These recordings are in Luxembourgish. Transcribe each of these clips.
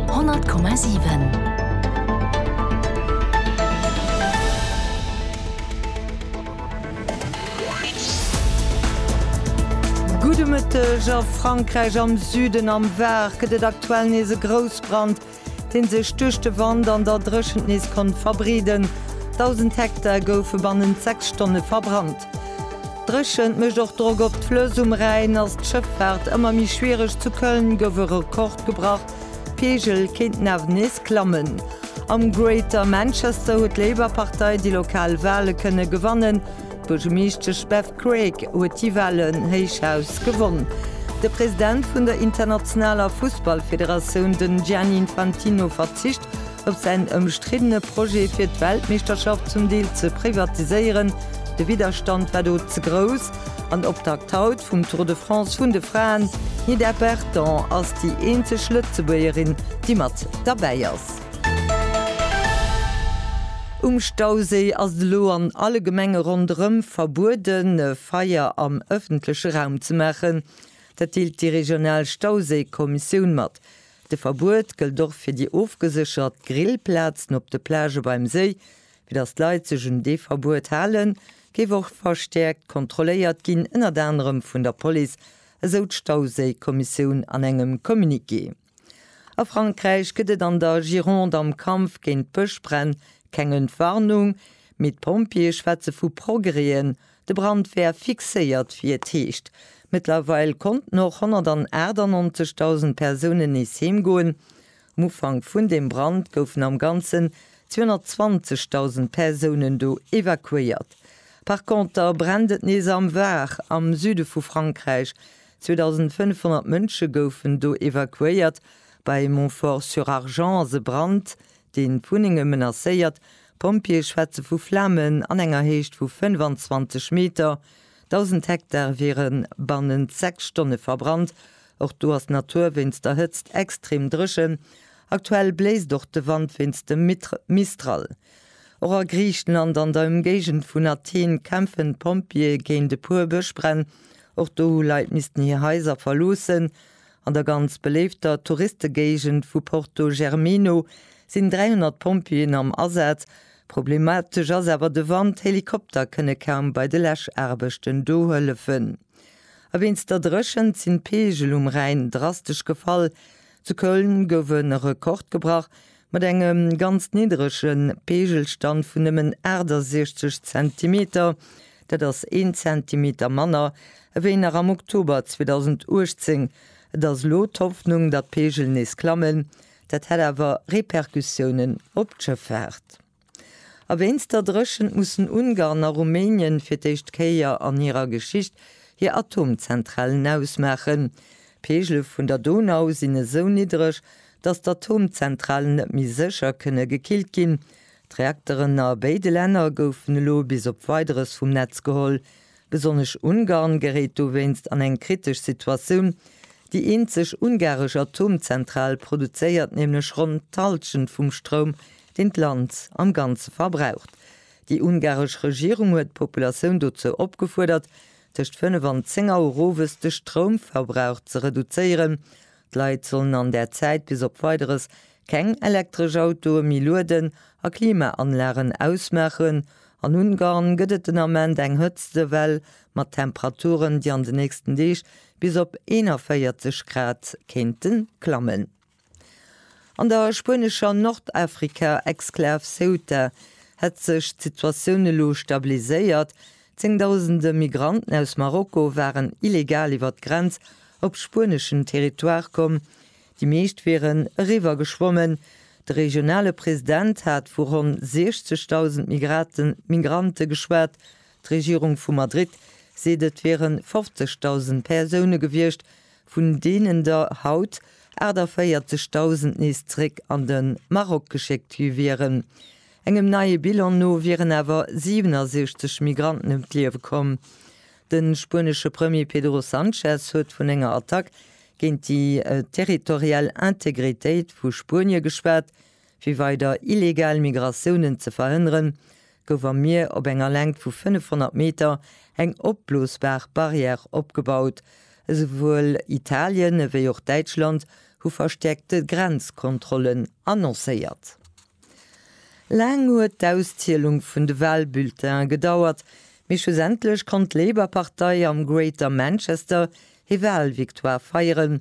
100,7. Gudde Mëtteg. A Frankräich am Süden am Var gëtt et aktuell nees e Groussbrand, dee sech duerch de Wand an der Dréchent nees konnt verbreeden. Dausend Hektar goufe bannent sechs Stonne verbrannt. Dréchent mécht och Drock op d'Flëss. Um Rhäin ass d'Schëffaart ëmmer méi schwiereg. Zu Köln gouf e Rekord gebrach, d'Peegel kéinten awer nees klammen. Am Greater Manchester huet d'Labour-Partei déi lokal Wale kënne gewannen. D'Buergemeeschtesch Bev Craig huet déi Walen héichaus gewonn. De President vun der internationaler Fussballfederatioun, den Gianni Infantino, verzicht op säin ëmstriddene Projet fir d'Weltmeeschterschaft zum Deel ze privatiséieren, de Widderstand war do ze grouss, an Optakt haut vum Tour de France vun de Fraen, d'Nida Berton ass déi eenzeg Lëtzebuergerin, déi mat derbäi ass. Um Stauséi ass et elo an alle Gemenge ronderëm verbueden, e Feier am ëffentleche Raum ze maachen. Dat deelt déi regional Stauséikommissioun mat. De Verbuet gëllt och fir déi ofgeséchert Grillplazen op de Plagë beim Séi. Fir datt d'Leit sech un dee Verbuet halen, géif och verstäerkt kontrolléiert ginn, ënnert anerem vun der Police, esou d'Stauséikommissioun an engem Communiqué. A Frankräich gëtt et an der Gironde am Kampf géint d'Bëschbränn keng Entwarnung, mee d'Pompjeeë schwätze vu Progrèsen, De Brand wär fixéiert, wéi et heescht. Mëttlerweil konnten och 198.000 Persounen nees heem goen. Um Ufank vun deem Brand goufen am Ganzen 220.000 Persounen do evakuéiert. Par Conter brennt et nees am Var, am Süde vu Frankräich. 2.500 Mënsche goufen do evakuéiert. Bei Montfort-sur-Argens ass e Brand, deen d'Wunnenge menacéiert, D'Pompjeeë schwätze vu Flamen an enger Héicht vu 25 Meter. Dausend Hektar wiere bannent sechs Stonne verbrannt. Och do ass d'Natur wéinst der Hëtzt extrem dréchen. Aktuell bléist och de Wand wéinst dem Mistral. Och a Griichenland an der Ëmgéigend vun Athen kämpfen d'Pompjeeë géint e puer Bëschbränn. Och do hu Leit missten hir Haiser verloossen. An der ganz beléifter Touristegéigend vu Porto Germino sinn 300 Pompjeeën am Asaz. Problematesch ass awer de Wand, Helikopter kënne kaum bei de Läschaarbechten do hëllefen. A wéinst der Dréchent sinn d'Peegel um Rhäin drastesch gefall. Zu Köln gouf e Rekord gebrach, Mat engem ganz nidderege Peegelstand vun nëmmen 68 Zentimeter, dat ass een Zentimeter manner ewéi nach am Oktober 2018. Et ass elo d'Hoffnung, datt d'Peegel nees klammen, dat hätt awer Repercussiounen op d'Schëffaart. A wéinst der Dréchent mussen Ungarn a Rumänien fir d'éischt Kéier an hirer Geschicht hir Atomzentralen ausmaachen. D'Peegele vun der Donau sinn esou niddreg, datt d'Atomzentralen net méi sécher kënne gekillt ginn. D'Reakteren a béide Länner goufen elo bis op Weideres vum Netz geholl. Besonnesch Ungarn geréit dowéinst an eng kritesch Situatioun. Déi eenzeg ungaresch Atomzentral produzéiert nämlech ronn d'Halschent vum Stroum, deen d'Land am Ganze verbraucht. Déi ungaresch Regierung huet d'Populatioun dozou opgefuerdert, tëscht 5 an 10 Auer owes de Stroumverbrauch ze reduzéieren. D'Leit sollen an där Zäit bis op Weideres keng elektresch Autoe méi lueden a Klimaanlagen ausmaachen. An Ungarn gëtt et den Ament eng Hëtztewell mat Temperaturen, déi an den nächsten Deeg bis op 41 Grad kéinte klammen. An der spuenescher Nordafrika-Exklav Ceuta hätt sech d'Situatioun elo stabiliséiert. Zéngdausende Migranten aus Marokko waren illegal iwwer d'Grenz op spueneschen Territoire komm. Déi meescht wieren eriwwer geschwommen. De regionale President hat vu ronn 60.000 Migrante geschwat. D'Regierung vu Madrid seet et wiere 50.000 Persoune gewiescht, vun deenen der haut 48.000 nees zréck an de Maroc geschéckt gi wieren. Engem neie Bilan no wieren awer 67 Migranten ëm d'Liewe komm. De spuenesche Premier Pedro Sanchez huet vun enger Attack géint déi territorial Integritéit vu Spuenie geschwat. Fir weider illegal Migratiounen ze verhënneren, gouf am Mier op enger Längt vu 500 Meter eng opblosbar Barrière opgebaut. Esouwuel Italien ewéi och Däitschland hu verstäerkte Grenzkontrollen annoncéiert. Laang huet d'Auszielung vun de Walbulletine gedauert, mee schlussendlech konnt d'Labour-Partei am Greater Manchester hir Walvictoire feieren,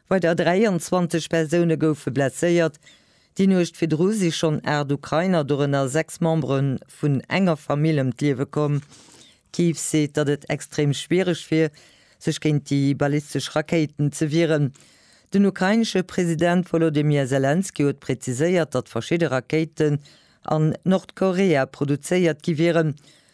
Weider 23 Persoune goufe blesséiert. Déi Nuecht virdru si schonn 8 Ukrainer, dorënner 6 Membere vun enger Famill, ëm d'Liewe komm. Kiew seet, datt et extrem schwiereg wier, sech géint déi ballistesch Rakéiten ze wieren. Den ukrainesche President Wolodymyr Selenskyj huet präziséiert, datt verschidde Rakéiten an Nordkorea produzéiert gi wieren.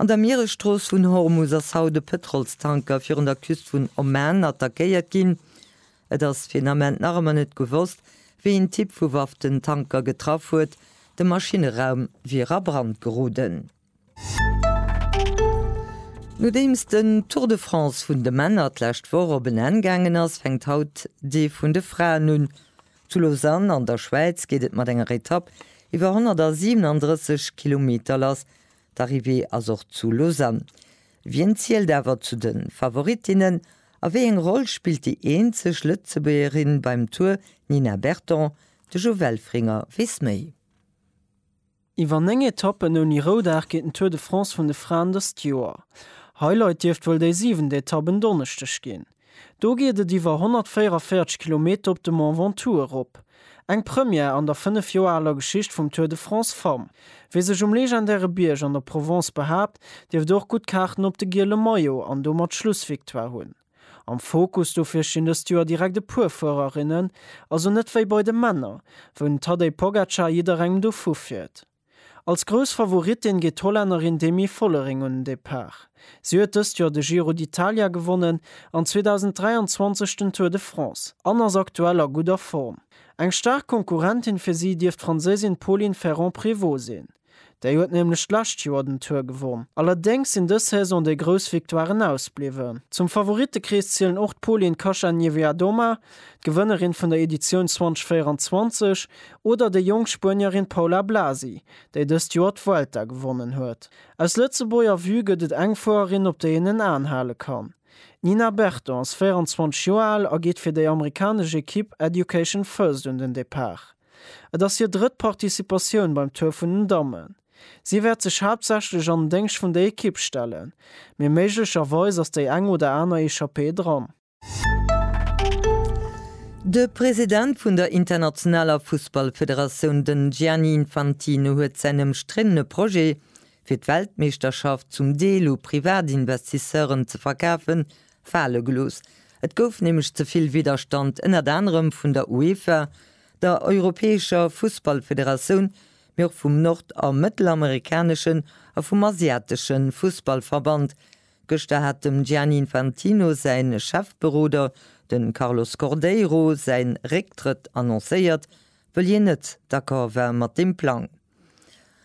An der Mieresstrooss vun Hormus ass haut e Pëtrolstanker virun der Küst vun Oman attackéiert ginn. Et ass fir den Ament nach ëmmer net gewosst, wéi een Typ vu Waff den Tanker getraff huet. De Maschineraum wier a Brand geroden. Nodeems den Tour de France vun de Männer d'lescht Woch op en Enn gaangen ass, fänkt haut dee vun de Fraen un. Zu Lausanne an der Schwäiz geet et mat enger Etapp iwwer 137 Kilometer lass. D'Arrivée ass och zu Lausanne. Wien zielt awer zu de Favorittinnen a wéi eng Roll spillt déi eenzeg Lëtzebuergerin beim Tour Nina Berton? De Jo Welfringer weess méi. Iwwer 9 Etappen ouni Roudag geet den Tour de France vun de Fraen dëst Joer. Highlight dierft wuel déi siwent Etapp en Donneschdeg ginn. Do geet et iwwer 144 Kilometer op de Mont Ventoux erop. Eng Première an der 5 Joer aler Geschicht vum Tour de France Femmes. Wie sech um legendäre Bierg an der Provence behaapt, dierft och gutt Kaarten op de giele Maillot an domat d'Schlussvictoire hunn. Am Fokus dofir stinn dëst Joer direkt e puer Fuererinnen, also net wéi bei de Männer, wou den Tadej Pogacar jidderengem dovu fiert. Als grouss Favorittin geet d'Hollännerin Demi Vollering un den Depart. Si huet dëst Joer de Giro d'Italia gewonnen an 2023 den Tour de France an ass aktuell a gudder Form. Eng staark Konkurrentin fir si dierft d'Franséisin Pauline Ferrand-Prévot sinn. Déi huet nämlech d'lescht Joer den Tour gewonn. Allerdéngs sinn dës Saison déi grouss Victoiren ausbliwwen. Zum Favorittekrees zielen och d'Polin Kacha-Niewiadoma, d'Gewënnerin vun der Editioun 2024, oder déi jonk Spuenierin Paula Blasi, déi dëst Joer d'Vuelta gewonnen huet. Aus Lëtzebuerger Vue gëtt et eng Fuererin, op déi een en Aen hale kann. D'Nina Berton ass 24 Joer al a geet fir déi amerikanesch Ekipp Education First un den Depart. Et ass hir drëtt Participatioun beim Tour vun den Dammen. Si wäert sech haaptsächlech an den Déngscht vun der Ekipp stellen, mee méiglecherweis ass déi eng oder aner Echappée dran. De President vun der internationaler Fussballfederatioun, den Gianni Infantino, huet säin ëmstriddene Projet, fir d'Weltmeeschterschaft zum Deel u Privatinvestisseuren ze verkafen, fale gelooss. Et gouf nämlech ze vill Widderstand, ënnert anerem vun der UEFA, der europäescher Fussballfederatioun, mee och vum nord a mëttelamerikaneschen a vum asiatesche Fussballverband. Gëschter hat dem Gianni Infantino säi Chefberoder, de Carlos Cordeiro, säin Récktrëtt annoncéiert, wëll hien net d'accord war mat deem Plang.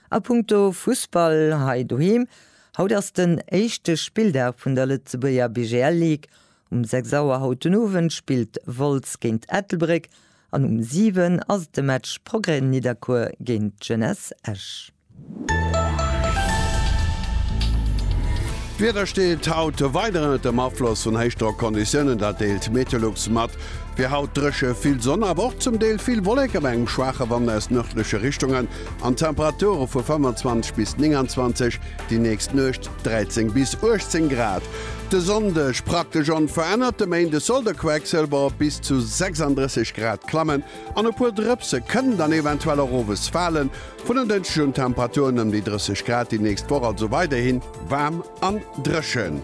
A punkto Fussball hei doheem, Haut ass den éischte Spilldag vun der Lëtzebuerger BGL League. Um 6 Auer haut den Owend spillt Wolz géint Ettelbréck an um 7 ass et de Match Progrès Nidderkuer géint Jeunesse Esch. D'Wieder steet haut weider ënnert dem Afloss vun Héichdrockconditiounen, dat deelt Meteolux mat. Fir haut dréche, vill Sonn awer och zum Deel vill Wolleke bei engem schwaache Wand aus nërdleche Richtungen an Temperature vu 25 bis 29, déi nächst Nuecht 13 bis 18 Grad. De Sonndeg praktesch onverännert, de Méinde soll de Quecksëlwer op bis zu 36 Grad klammen an e puer Drëpse kënnen dann eventuell och owes falen. Vun en Dënschdeg un Temperaturen ëm déi 30 Grad, déi nächst Woch also weiderhi waarm an dréchen.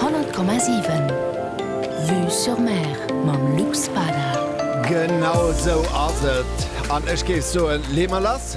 Honnert Komma siwen Vue sur Mer mam Luc Spada. Genau sou ass et, an ech géif soen, leeë mer lass!